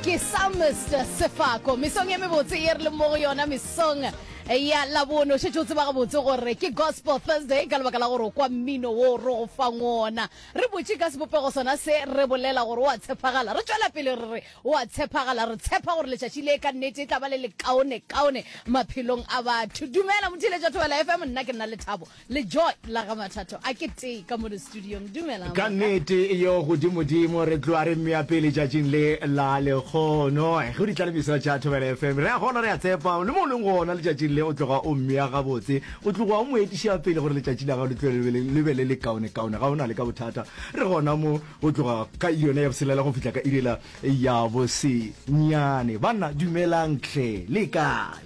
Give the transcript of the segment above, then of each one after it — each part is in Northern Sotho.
Ke Psalmist Sefako, mesong e mebotse ye re leng mo go yona, mesong ya Labone. O šetše o tseba gabotse gore ke Gospel Thursday ka lebaka la gore o kwa mmino wo re go fang wona. Re botše ka sebopego sona se re bolela gore o a tshepagala. Re tšwela pele re re o a tshepagala. Re tshepa gore letšatši le ka nnete e tla ba le lekaonekaone maphelong a batho. Dumela motheeletša Thobela FM, nna ke Nnalethabo. le joy la ga mathatho a ke tee ka mone studiong dumelang ka nnete yo godimodimo re tloa re mmea pele tšatšing le la lekgono eh, go ditlalemiso tša thobela fm re a gona re a tsepa le mo o leng gona letšatšing le o tloga o mmea gabotse o tloga o mo etiša pele gore letšatši la gago le tlo le be le le kaonekaone ga o na le ka bothata re gona mo o tloga ka yone ya boselela go fihla ka irela ya bosenyane banna dumelang tlhe le kae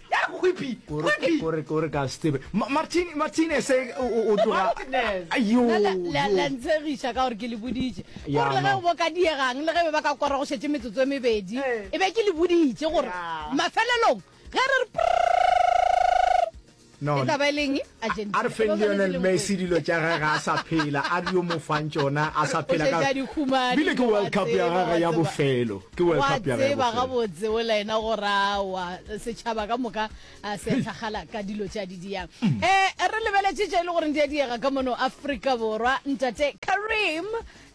ntshegiša ka gore ke le boditše gore le ge o boka diegang le ge be ba ka kora go šetse metsotso e mebedi e be ke le boditše gore mafelelong ge re re e tla ba e leng A re feng Lionel Messi dilo tša gage a sa phela, a re yo mo fang tšona a sa phela ka bile ke World Cup ya gage ya bofelo, ke World Cup ya gage ya bofelo. Wa tseba gabotse go la ena go ra wa setšhaba ka moka a se tlhagala ka dilo tša di diyang. Eh, re lebeletše tše e le gore di a diega ka mono Afrika Borwa, Ntate Kareem.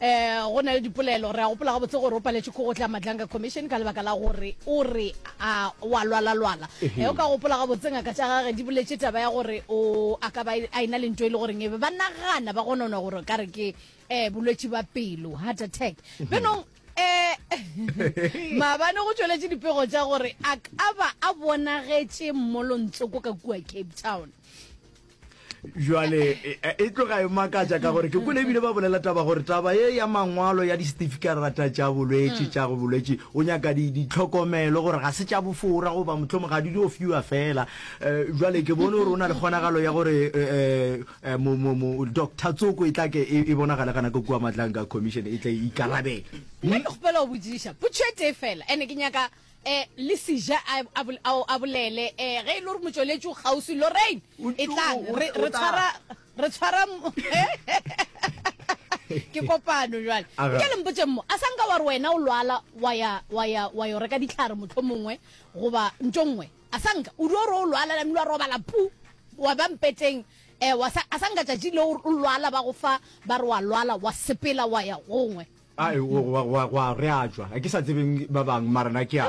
Eh, go na le dipolelo. Re a gopola gabotse gore o paletše ko go tla Madlanga Commission ka lebaka la gore o re a wa lwala-lwala. Eh, o ka gopola gabotse ngaka tša gage di boletše taba ya gore o a ka ba a ena le nto e le goreng e be ba nagana ba gononwa gore ka re ke eh, bolwetši ba pelo, heart attack. Benong, eh, maabane go tšweletše dipego tša gore a ka ba a bonagetše mmolontsoko ka kua Cape Town. jwale e, e, e tloga e makatša ka gore ke kole ebile ba bolela taba gore taba e ya mangwalo ya disetifikaterata tša bolwetši tša go bolwetši o nyaka ditlhokomelo gore ga se tša bofora goba motlhomo ga di dio fiwa fela um jwale ke bone gore o na le kgonagalo ya gore um doctor tsoko e tlake e, e bonagale gana ka kua matlang ka commission e tla ikarabela nna ke kgopela go botsiša potšo e tee fela ande ke nyaka E, le sija a, a, a, a bolele e, ge e le gore motšweletši o kgauswi lorraine e tlang re, re tshwara re tshwara ke kopano jale nke le mpotse mmo a sanka wa re wena o lwala wa ya wa ya wa yo reka ditlhare motlho mongwe goba ntho nngwe a sanka o dio re o lwala la mlwa robala pu wa ba mpeteng eh wa sa a sanka tšatši le o lwala ba go fa ba re wa lwala wa sepela wa ya gongwe a e o wa wa wa re a tšwa a ke sa tsebeng ba bang mara na ke a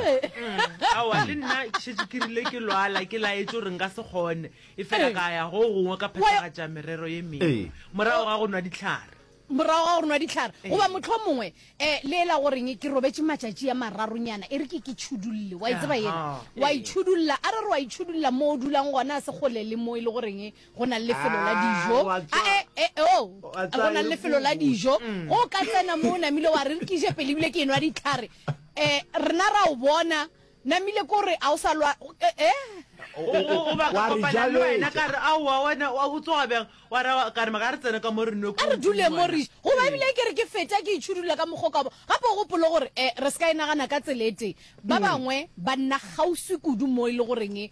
awa le nna ke šetše ke rile ke lwala ke laetse gore nka se kgone e fela ka ya go gongwe ka phethagatša merero ye mengwe Ee. morago ga go nwa ditlhare morago ga go nwa ditlhare Ee. goba motlho mongwe um le ela goreng ke robetše matšatši a mararonyana e re ke ke tšhudulle wa e tseba ena Aha, wa ee. itšhudulla a re re wa itšhudulla mo o dulang gona a se kgole le mo e le goreng Go na le lefelo la dijo. A e, e, o, go na le lefelo la dijo. Go ka tsena mo o namile wa re re ke je pele ebile ke enwa ditlhare. Eh, rena ra o bona. Namile ko re a o sa lwa, eh. O, o, o, o ba ka kopana le wena ka re a wa wena wa go tsoga bjang wa ra ka re maka re tsene ka mo re nwe ko. A re dule mo re. Go ba ebile ke re ke feta ke itshudula ka mokgwa ka bo. Gape o gopolo gore eh re se ka e nagana ka tsela e tee. Ba bangwe ba nna kgauswi kudu mo e le goreng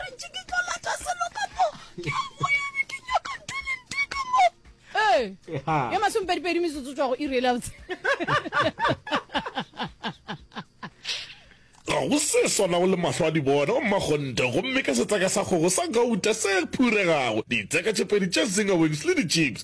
Rentši ke tlo lata selo ka mo ke a boya be ke nyaka talente ka mo. Ee, Eha. ya masomepedipedi metsotso tswa go iri e labotse. ga go se swanago le mahlo a dibona o mmakgonte gomme ka setseka sa kgogo sa gauta se phuregago ditseka tše pedi tša zinga wings le di-chips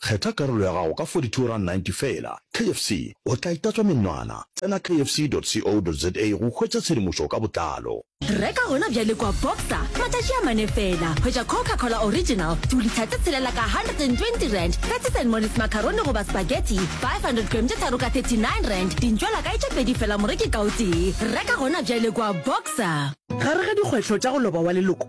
Kgetha karolo ya gago ka R42.90 feela. KFC, o tla itatswa menwana! Tsena kfc.co.za go hwetša tshedimošo ka botlalo. Reka gona bjale kua Boxer, matšatši a mane feela. Hwetša Coca-Cola Original, dulitha tše tshelela ka R120, Betty Saint Molly's macaroni goba spaghetti, 500 grame tše tharo ka R39, dintšwelakae tše pedi feela moreki ka o tee. Reka gona bjale kua Boxer. Gare ga dikgwetlho tša go loba wa leloko,